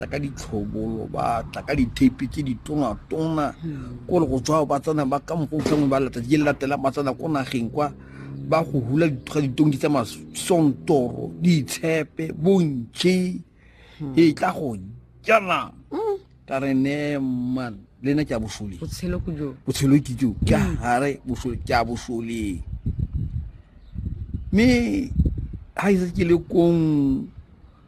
tla ka ditlhobolo ba tla ka ditepe tse di tonatona hmm. kore go tswa ba tsena ba ka mokgwa utlwangwe ba lata di latela ba tsena ko nageng kwa ba go hula ga ditongi tsa masontoro ditshepe bontšhe hmm. e tla go jana hmm. ka re neman le ena ke a bosole botshelo ke jo ke gare bosole ke a bosoleng mme ga ise ke le kong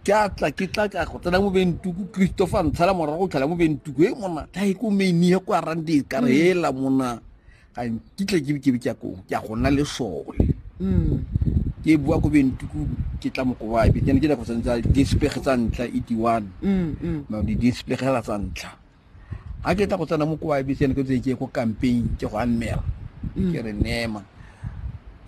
ke a tla ke tla ka go tsena mo bentuku christopher ntshala morago o tlhala mo bentuku e mona ta e ko meni ya kwa rande ka re hela mm. mona ga nkitle ke ke ke ko ke a go nna le sole mm. ke bua ko bentuku ke tla moko wa be ke ne ke tla go tsentsa di spege tsa ntla e di one mm, ma di di spege la tsa ntla ga ke tla go tsena mo kwa ibc ne ke tse ke ko campaign ke go annela mm. ke re nema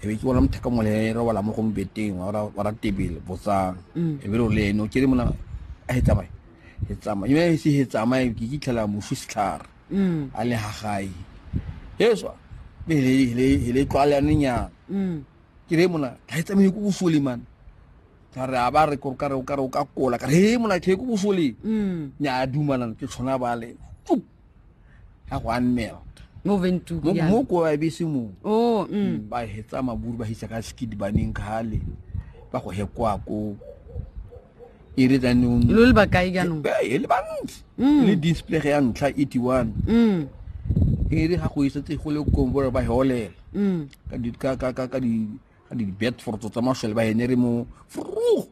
ebe ke bona mothaka mole e re wala mo go mbeteng wa ra tebele botsang mm. ebe lo le eno ke re mona a he tsamaye he tsamaye mme e se he tsamaye ke ke tlhela mo fusitlhara mm. a le ha gae yeswa be le le le tlwalane nya ke re mona ga e tsamaye go fole man ka re a ba re kore kare o kare o ka kola ka re he mona ke ko bosoleng mm. ne a dumalana ke tshwana ba le ga go a nnela mo ko a bese mo oh, mm. mm, ba hetsa maburu ba hitsa ka skidi baneng kgale ba go hekoa ko e re tsanong lo le bakae jaanong e le bantsi le display ya ntlha eighty one e re ga go isetse go le kong bore ba heolela ka di di bet for to tama shel ba henere mo fru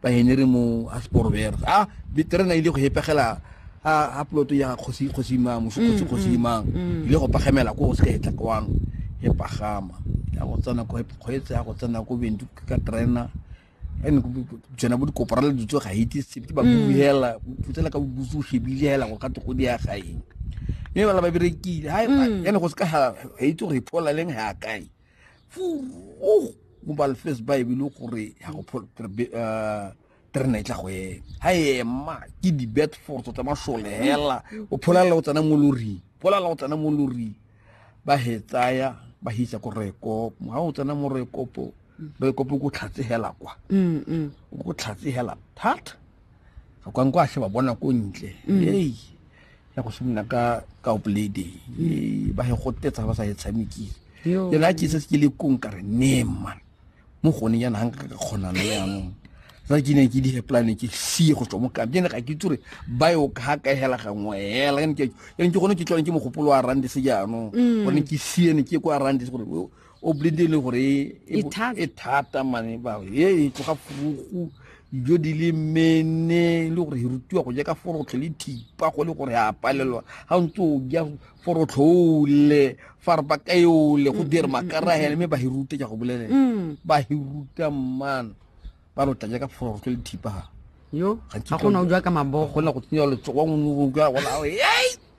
ba henere mo a sport ver ah bi terena ile go hepegela a a ploto ya khosi khosi ma mo khosi khosi ma ile go pagamela ko se ka etla kwang e pagama ya go tsena ko go etsa go tsena ko bendu ka terena ene ko tsena bo dikoporale di tsoga hiti se ba buhela putsela ka busu shebile hela go ka tgo di ya gaeng mme bala ba berekile ha ene go se ka ha itse gore phola leng ha kae goba lefes baebele gore ya go terena e tla go ema ga ema ke di-bed force tsa masole hela o pholalela o tsena mo loring pholalela o tsena mo loring ba he tsaya ba hitsa ko rekopo ga o tsena mo rekopo rekopo ko tlhatse hela kwa ko tlhatse hela thata ga kwang kwa a sheba bona ko ntle ei ya go simolola ka ka oplady e ba he go tetsa ba sa e tshamekile Yo. le la ke se ke le kong ka re ne man mo gone yana hang ka kgona le yanong sa ke ne ke di plan ke sie go tswa mo ka ke ne ga ke tsure ba yo ka ka hela ga ngwe hela ke ne ke ke gone ke tlone ke mogopolo wa rande se jaanong gore ke sie ne ke kwa rande se gore o blinde e le gore e, e, e thata mane ba e e tloga furugu dijo di le mene e le gore e rutiwa go ja ka forotlhe le thipa go le gore a palelwa ga ntse o ja forotlhoole fa re bakaole go dire makarahele mme ba e rute ja go bolelela mm. ba e ruta mmana ba lo tla ja ka forotlho le thipa yo ga gona o jwa ka mabogo gona go tsenya letsogo wa ngwe o jwa gona